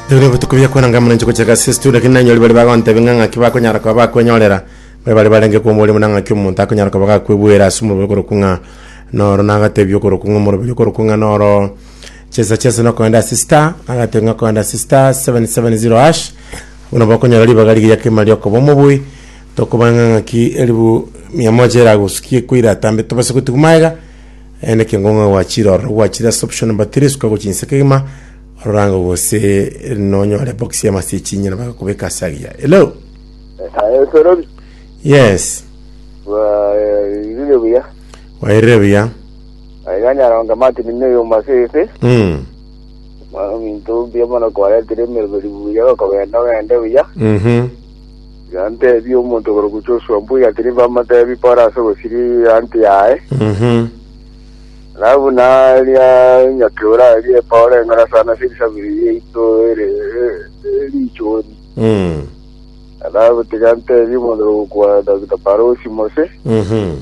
Ebiro bituko bia kwananga mwananchi gochia gasi situ lakini nanyori bari bagontebe ng'a ng'aki bakonyara kwa bakwenyorera bari bari barenge kwa omorimo na ng'aki omonto akonyara kwa bagakwebwera ase omorobio okoro kung'a noro nagatebi okoro kung'a omorobio okoro kung'a noro chesa chesa nokoenda ase star agatebi ng'a koenda ase star 770 hash buna bakonyora ribaga rigiya kima riokoba omoboi tokoba ng'a ng'aki eribu mia moja eragosukie koira atambe tobase gotigwa magega Ere nekengo ng'a gwachire ororo gwachire ase obochenu mbatere esuka gochia inse kegima ororango gose nonyore box y'amase echinyena bagakobeka ase agiya hello Eh, Sorori. yes Irire buya. wairire buya Yanyaronga Martin ne yo masese. mm. Mwana minto bia mwana kwaretire miribiri buya bakogenda ogende buya. mhm Gantebie omonto okorokwa Joshua mbuya tiri bamotebi pore ase ogosiria eanty yaye, Mhm. na buna aria nyakeura aria pore eng'ora sana ase erisabiri riaito ere e- richori. Mm. Nabotiga ntebie omonto okorokwa Dr. Parosi Mose, Mhm.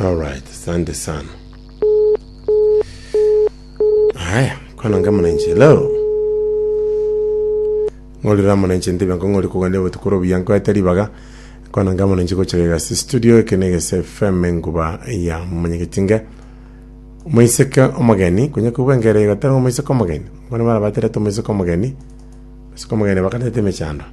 Alright, asante sana. Haya, kwana nga mwananchi, hello. Ng'orira mwananchi ndibe ngo ng'ori kugania botuko robuya nkoete ribaga. Kwana nga mwananchi gocha gasi studio ekene gese FM nguba ya manyegetinge. Moiseke omogeni, kunya kubwa ngere igotera ngo moiseke omogeni. Mwana bara batera to moiseke omogeni. Moiseke omogeni bakarete mechando.